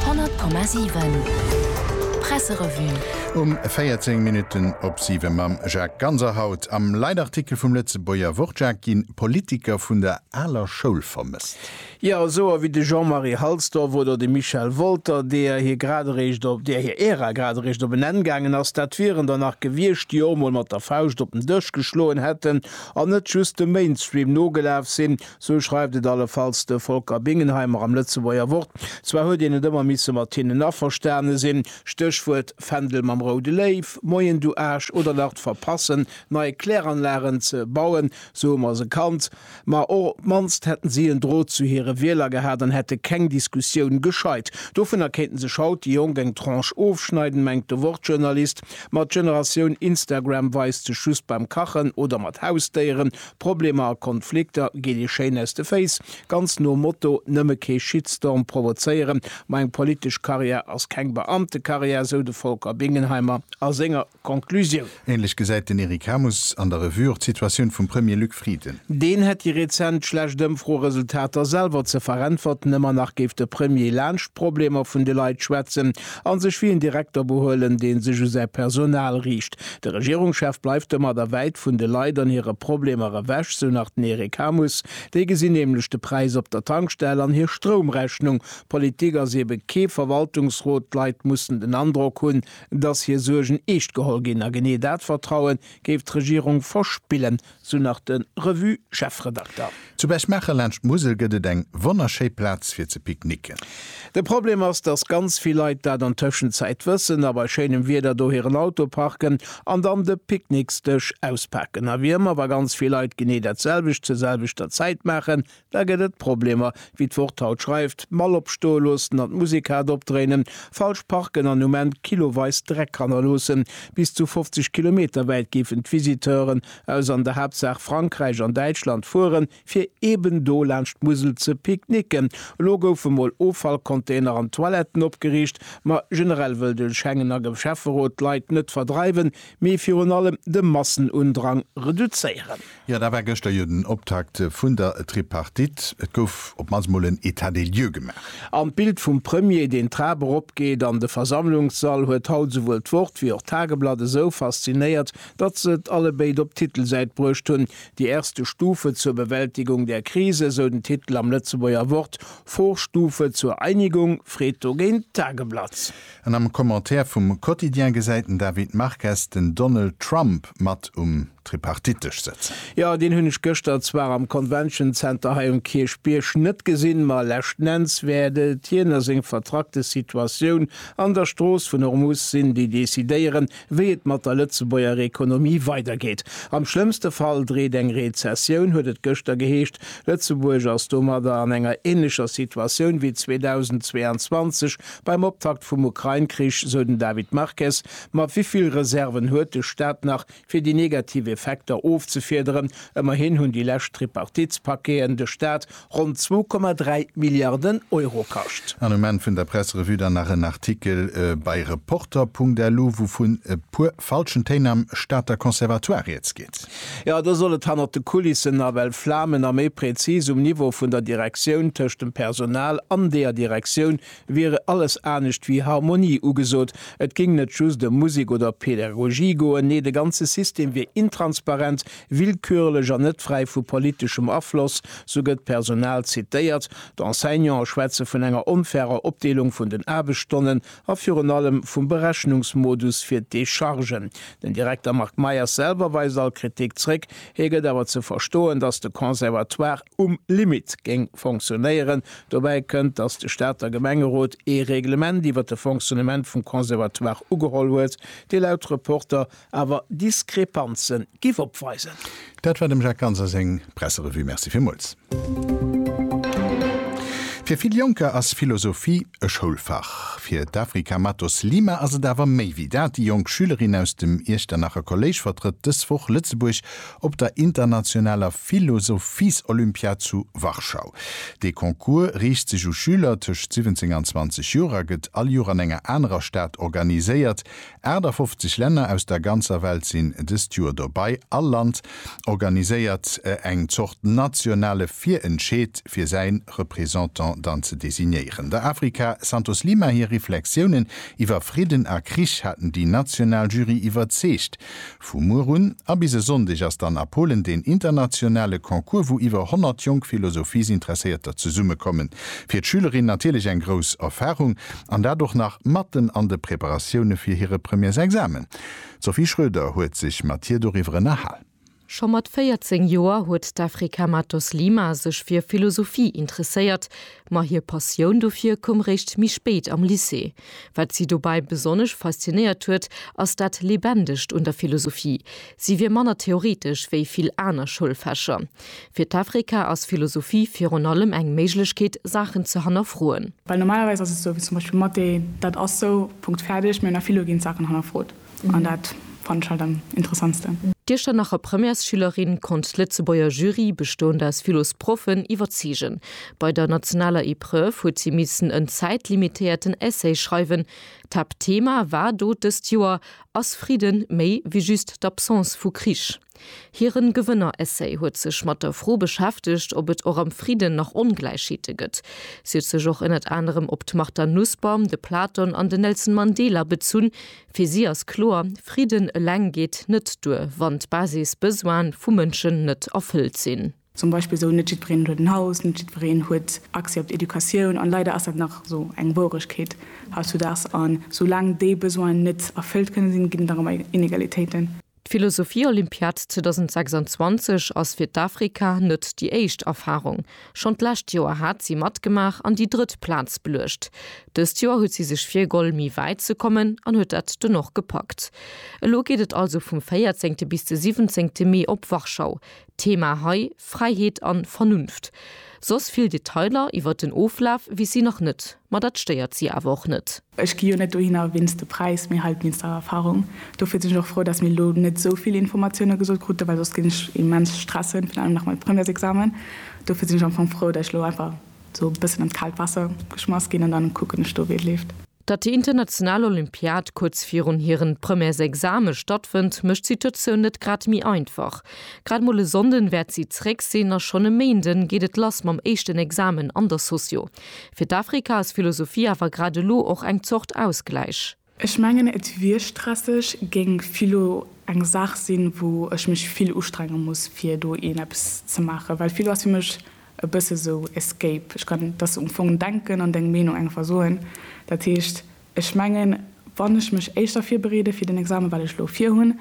100,7 Presserevue. Um 14 Minutten op 7 mam Jacques Ganser. Haut am Leitartikel vum Lëtzebuerger Wort, Jacques, gi Politiker vun der aler Schoul vermësst. Jo, souer wéi de Jean-Marie Halsdorf oder de Michel Wolter, deer hir grad eréischt op, deer hir Ära grad eréischt op en Enn gaangen ass. Dat wieren der nach gewiescht, déi och emol mat der Fauscht op den Dësch geschloen hätten an net just dem Mainstream nogelaf sinn, Sou schreift et allefalls de Volker Bingenheimer am Lëtzebuerger Wort. Zwar huet een et ëmmer misse mat hinnen averstane sinn, Stéchwuert, Fändel mam roude Léiw, Moien du Aasch, oder nach d'Verpassen, nei Kläranlagen ze bauen, sou hu mer se kannt. Ma och op d'mannst hätten si en Drot zu hire Wieler gehat an hätte keng Diskussioun gescheit. Dovunner kéinten sech haut déi Jonk eng Tranche ofschneiden, mengt de Wort-Journalist. Ma d'Generatioun Instagram weist sech just beim Kachen oder mat Hausdéieren, Problemer a Konflikter geet ee schéin aus de Féiss, ganz nom Motto, nëmme kee Shitstorm provozéieren, ma eng politesch Karriär ass keng Beamtekarriär, sou de Volker Bingenheimer a senger Conclusioun. Ähnlech gesäit den Eric Hamus an der Revue och d'Situatioun vum Premier Luc Frieden. Deen hätt déi rezent schlecht Ëmfroeresultater selwer ze veräntwerten, ëmmer nach géif de Premier laanscht d'Problemer vun de Leit schwätzen, A sech wéi en Direkter behuelen, dee sech u säi Personal riicht. De Regierungschef bleift domat a wäit vun de Leit an hire Problemer ewech, sou nach den Eric Hammes. Déi gesinn nämlech de Präis op der Tankstell an hir Stroumrechnung. Politik ass eebe kee Verwaltungsrot. D'Leit mussen den Androck hunn, dass hir Suergen eescht geholl ginn. A genee dat Vertraue géif d'Regierung verspillen, Sou nach de Revue-Chefredakter. Zu Berchmaacher laanscht d'Musel gëtt et eng wonnerschéi Plaz fir ze picknicken. De Problem ass, dass ganz vill Leit dat an Tëschenzäit wëssen a bei schéinem Wieder do hiren Auto parken an dann de Picknicksdësch auspaken. A wéi ëmmer, wa ganz vill Leit genee dat selwecht zur selwechter Zäit maachen, Da gëtt et Problemer, wéi d'Wort haut schreift, d'Mall opstoe loossen an d'Musekrad opdréinen, falsch parken an um Enn kiloweis Dreck hannerloossen. Bis zu 50 Kilometer wäit géifen d'Visiteuren aus an der Haaptsaach Frankräich an Däitschland fueren, fir eben do laanscht d'Musel ze picknicken. Elo goufe mol Offallcontainer an Toiletten opgeriicht, ma generell wëll de Schengener Schäfferot d'Leit net verdreiwen, mee virun allem de Massenundrang reduzéieren. Jo, da war gëschter jo den Optakt vun der Tripartite. Et gouf op d'mannst mol en État des lieux gemaach. An d'Bild vum Premier, deen d'Trap eropgeet an de Versammlungssall, huet haut esouwuel d'Wort wéi och d'Tageblatt esou faszinéiert, datt se et allebéid op d'Titelsäit bruecht hunn, Die erste Stufe zur Bewältigung der Krise, sou den Titel am Lëtzebuerger Wort, Vorstufe zur Einigung, freet dogéint d'Tageblatt. An am Commentaire vum Quotidien gesäit den David Marques den Donald Trump mat um Tripartitesch sëtzen. Jo, deen hunn ech gëschter zwar am Convention Center hei um Kierchbierg net gesinn, ma leschtnenns wäert et hien a seng vertrackte Situatioun an der Strooss vun Hormuz sinn, déi decidéieren, wéi et mat der Lëtzebuerger Ekonomie weidergeet. Am schlëmmste Fall dreet eng Rezessioun, huet et gëschter geheescht. Lëtzebuerg ass domadder an enger änlecher Situatioun wéi 2022, Beim Optakt vum Ukrain-Krich sou den David Marques, Ma wéi vill Reserven huet de Staat nach, fir déi negativ Effekter ofzefiederen? Ëmmerhin hunn déi lescht Tripartitspaqueten de Staat ronn 2,3 Milliarden Euro kascht. An um Enn vun der Presserevue dann nach en Artikel bei Reporter.lu, wouvun e puer falschen Téin am Stater Conservatoire rieds geet. Jo, do soll et hannert de Kulissen nawell flamen a méi prezis um Niveau vun der Direktioun, tëscht dem Personal an deeër Direktioun wiere alles anescht wéi Harmonie ugesot. Et géing net just ëm Musek oder Pädagogie goen, nee de ganze System wier intransparent, willkürlech an net fräi vu politeschem Afloss, sou gëtt d'Personal zitéiert. D'Enseignante schwätze vun enger onfairer Opdeelung vun den Aarbechtsstonnen a virun allem vum Berechnungsmodus fir d'Dechargen. Den Direkter Marc Meyers selwer weist all Kritik zréck. Hie gëtt awer ze verstoen, datt de Conservatoire um Limit géing fonctionnéieren. Dobäi kënnt, datt de Stater Gemengerot ee Reglement iwwer de Fonctionnement vum Conservatoire ugeholl huet, dee laut Reporter awer Diskrepanzen giff opweisen. Dat war dem Jacques Ganser seng Presserevue. Merci villmools. Fir vill Jonker ass Philosophie e Schoulfach. Fir d'Afrika Matos Lima ass et awer méi wéi dat. Déi jonk Schülerin aus dem Iechternacher Kolléisch vertrëtt dës Woch Lëtzebuerg op der internationaler Philosophies-Olympiad zu Warschau. Dee Concours riicht sech u Schüler tëscht 17 an 20 Joer a gëtt all Joer an enger anerer Stad organiséiert. 58 Länner aus der ganzer Welt sinn dëst Joer dobei. All Land organiséiert eng Zort nationale Virentscheed fir säin Représentant dann ze designéieren. Der Africa Santos Lima hir Reflexiounen iwwer Fridden a Krich haten déi national Jury iwwerzeegt. Vu muer un a bis e Sonndeg ass dann a Polen deen internationale Concours, wou iwwer 100 jonk Philosophiesinteresséierter zesummekommen. Fir d'Schülerinnen natierlech eng grouss Erfarung, an dat och nach matten an de Preparatioune fir hire Premièresexamen. D'Sophie Schroeder huet sech mat hir doriwwer ënnerhal. Scho mat 14 Joer huet d'Afrika Matos Lima sech fir Philosophie interesséiert, Ma hir Passioun dofir koum réischt méi spéit am Lycée. Wat si dobäi besonnesch faszinéiert huet, ass dat Lebendegt un der Philosophie. Si wier manner theoretesch wéi vill aner Schoulfächer. Fir d'Efrika ass Philosophie virun allem eng Méiglechkeet, Saachen ze hannerfroen. Well normalerweis ass et esou, wéi zum Beispill Mathé, dat ass esou, Punkt, fäerdeg, mee an der Philo ginn d'Saachen hannerfrot. an dat fannen ech halt am interessantsten. D'Iechternacher nach Premièresschülerin konnt d'Lëtzebuerger Jury, bestoend aus Philosproffen, iwwerzeegen. Bei der nationaler Epreuve huet si missen en zäitlimitéierten Essay schreiwen. D'Haaptthema war do dëst Joer, Ass Fridden méi wéi just d'Absence vu Krich? Hiren Gewënner-Essay huet sech mat der Fro beschäftegt, ob et och am Fridden nach Ongläichheete gëtt. Si huet sech och ënnert anerem op d'Martha Nussbaum, de Platon an den Nelson Mandela bezunn. Fir si ass kloer, Fridden eleng geet net duer, wann d'Basis-Besoine vu Mënschen net erfëllt sinn. Zum Beispill esou, Net jiddwereen huet en Haus, net jiddwereen huet Accès op d'Educatioun. An leider ass dat nach esou eng Wouregkeet hautzudags. An esou laang déi Besoinen net erfëllt kënne sinn, ginn et nach ëmmer Inegalitéiten. D'Philosophie-Olympiad 2026 ass fir d'Afrika net déi éischt Erfarung. Schonn d'lescht Joer hat si matgemaach an déi drëtt Plaz beluecht. Dëst Joer huet si sech virgoll, méi wäit ze kommen an huet dat dunn och gepackt. Elo geet et also vum 14 bis de 17 Mee op Warschau. Thema hei, Fräiheet an Vernunft. Soss vill Detailer iwwert den Oflaf weess si nach net, ma dat stéiert si awer och net. Ech gi jo net dohinner wéinst de Präis, mee halt wéinst der Erfahrung. Dofir sinn ech och frou, dass mir elo net esou vill Informatioune gesot kruten, well soss géing ech immens stressen, virun allem nach mam Premièresexamen. Dofir sinn ech am Fong frou, dass ech elo einfach esou e bëssen an d'kaalt Waasser geschmass ginn an dann kucken ech do, wéi et leeft. Datt déi international Olympiad kuerz virun hiren Premièresexame stattfënnt, mécht d'Situatioun net grad méi einfach. Grad mol e Sonnden wäert si zeréck sinn a schonn e Méinden geet et lass mam éischten Examen an der Socio. Fir d'Afrika ass Philosophie awer grad elo och eng Zort Ausgläich. Ech mengen et wier stresseg, géing Philo eng Saach sinn, wou ech mech vill ustrenge muss fir do een eppes ze maachen, well Philo ass fir mech e bësse sou Escape, ech kann dass um Fong denken an deng Meenung einfach soen, dat heescht, ech mengen, wann ech mech éischter virbereede fir den Examen, wat ech elo virhunn,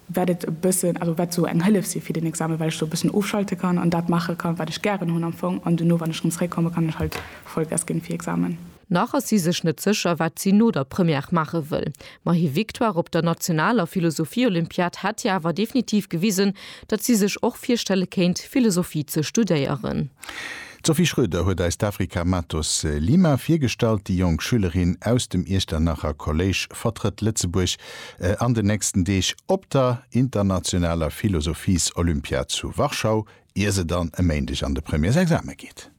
wäert et e bëssen, also wäert sou eng Hëllef si fir den Examen, well ech do e bëssen ofschalte kann an dat maache kann, wat ech gären hunn am Fong, an duerno, wann ech rëm zréckkomme, kann ech halt Vollgas ginn fir Examen. Nach ass si sech net sécher, wat si no der Première maache wëll. Ma hir Victoire op der nationaler Philosophie-Olympiad hätt hir awer definitiv gewisen, datt si sech och virstelle kéint, Philosophie ze studéieren. D'Sophie Schroeder huet eis d'Afrika Matos Lima virgestallt. Déi jonk Schülerin aus dem Iechternacher Kolléisch vertrëtt Lëtzebuerg an den nächsten Deeg op der internationaler Philosophies-Olympiad zu Warschau, ier se dann e Méindeg an de Premièresexame geet.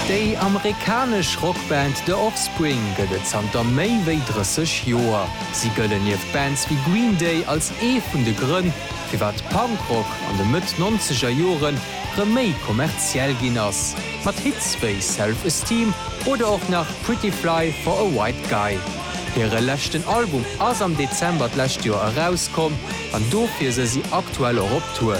Déi amerikanesch Rockband The Offspring gëtt et zanter méi wéi 30 Joer. Si gëllen nieft Bands wéi Green Day als ee vun de Grënn, firwat Punkrock an de Mëtt-Nonzeger Jore rëm méi kommerziell ginn ass, mat Hits wéi Self Esteem oder och nach Pretty Fly for a White Guy. Hire leschten Album ass am Dezember d'lescht Joer erauskomm an dofir se si aktuell och op Tour.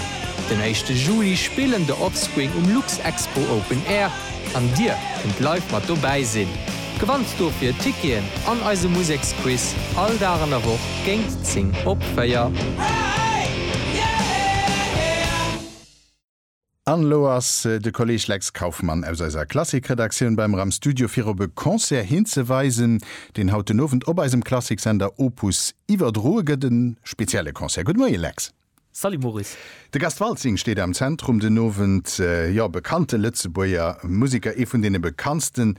Den éischte Juli spillen The Offspring um Luxexpo Open Air an Dir kënnt live mat dobäi sinn. Gewannt dofir Ticketen an eise Museksquiz all Dag an der Woch géingt 10 op 4. An elo ass de Kolleg Lex Kauffmann aus eiser Klassik-Redaktioun bei mer am Studio fir op e Concert hinzeweisen, deen haut den Owend op eisem Klassik-Sender Opus iwwerdroe gëtt. E spezielle Concert. Gudde Moie Lex. Salut Maurice. De Gast Waltzing steet am Zentrum den Owend. Jo, bekannte Lëtzebuerger Museker, ee vun deene bekanntsten.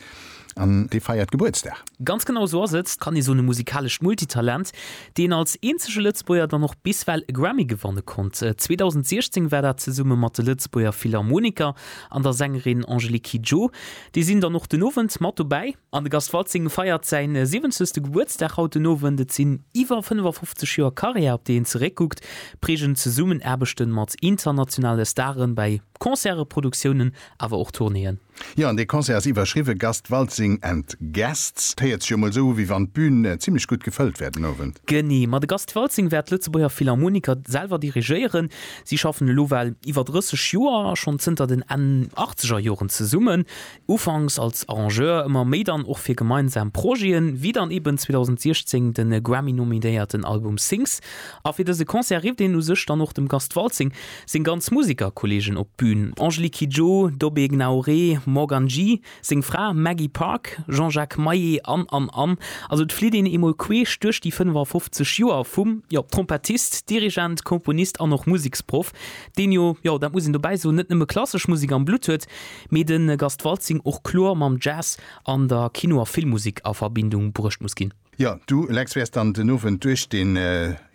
An dee feiert Gebuertsdag. Ganz genau esou ass et, kann ee soen, e musikalescht Multitalent, deen als eenzege Lëtzebuerger dann och biswell e Grammy gewanne konnt. 2016 war dat zesumme mat de Lëtzebuerger Philharmoniker an der Sängerin Angélique Kidjo. Déi sinn dann och den Owend mat dobäi. An de Gast Waltzing feiert säin 70. Gebuertsdag haut den Owend. Et sinn iwwer 55 Joer Karriär, op déi een zeréckkuckt, prägend Zesummenaarbechte mat internationale Stare bei. Concerte, Produktiounen awer och Tournéeën. Jo, an dee Concert ass iwwerschriwwe Gast Waltzing and Guests. D'héiert sech jo mol esou u wéi wann d'Bün zimlech gutt gefëllt wär den Owend. Genee, ma de Gast Waltzing wäert d'Lëtzebuerger Philharmoniker selwer dirigéieren. Si schaffen elo well iwwer 30 Joer a schonn zënter den Enn Achtzegerjoren zesummen. Ufanks als Arrangeur, ëmmer méi dann och fir gemeinsam Projeten, wéi dann eben 2016 de Grammy-nominéierten Album Sings. A fir dëse Concert rifft een u sech dann och dem Gast Waltzing seng ganz Musikerkolleegen op d'Bün, Angélique Kidjo, Dobé Gnaoré, Morgan G, seng Fra Maggie Park, Jean-Jacques Maé an, an, an. Also et flitt een eemol queesch duerch déi 55 Joer vum, jo, Trompettist, Dirigent, Komponist an och Museksproff, deen jo, jo, dat muss een dobäi soen, net nëmme klassesch Musek am Blutt huet, mee de Gast Waltzing och kloer mam Jazz an der Kino a Filmmusek a Verbindung bruecht muss ginn. Jo, du, Lex, wäers dann den Owend duerch den,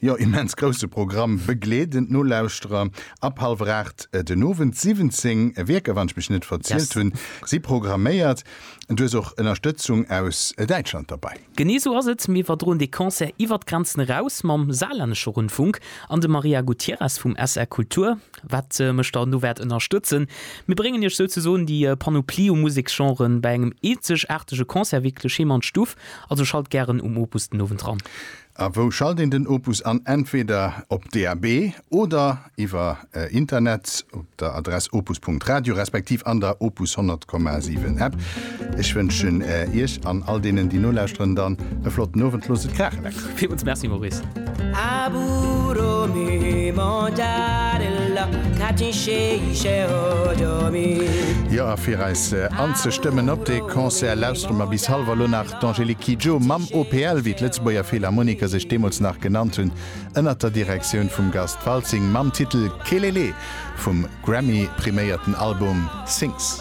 jo, immens grousse Programm begleeden. D'Nolauschterer, ab hallwer 8 den Owend. 17 Wierker, wann ech mech net verzielt hunn, si programméiert. Du hues och Ënnerstëtzung aus Däitschland derbei. Genee sou ass et, mir iwwerdroen dee Concert iwwert d'Grenzen eraus mam Saarlännesche Rundfunk an dem Maria Gutierrez vum SR Kultur, wat mech dann do wäert ënnerstëtzen. Mir bréngen iech souzesoen déi Panoplie u Museksgenren bei engem eenzegaartege Concert wierklech heem an d'Stuff. Also schalt gären um Opus den Owend ran. A wou schalt een den Opus an? Entweder op DAB oder iwwer Internet op der Adress opus.radio respektiv an der Opus 100,7 App. Ech wënschen Iech an all deenen, déi nolauschteren, dann e flotten Owend. Loosst et kraachen eng Kéier! Villmools Merci, Maurice. Aburo mi mangiare la cacin sceice odomi. Jo, a fir eis anzestëmmen op dee Concert, lauschteren mer bis halwer elo nach d'Angélique Kidjo mam OPL, wéi d'Lëtzebuerger Philharmoniker sech deemools nach genannt hunn. ënnert der Direktioun vum Gast Waltzing mam Titel Kelele vum Grammy-priméierten Album Sings.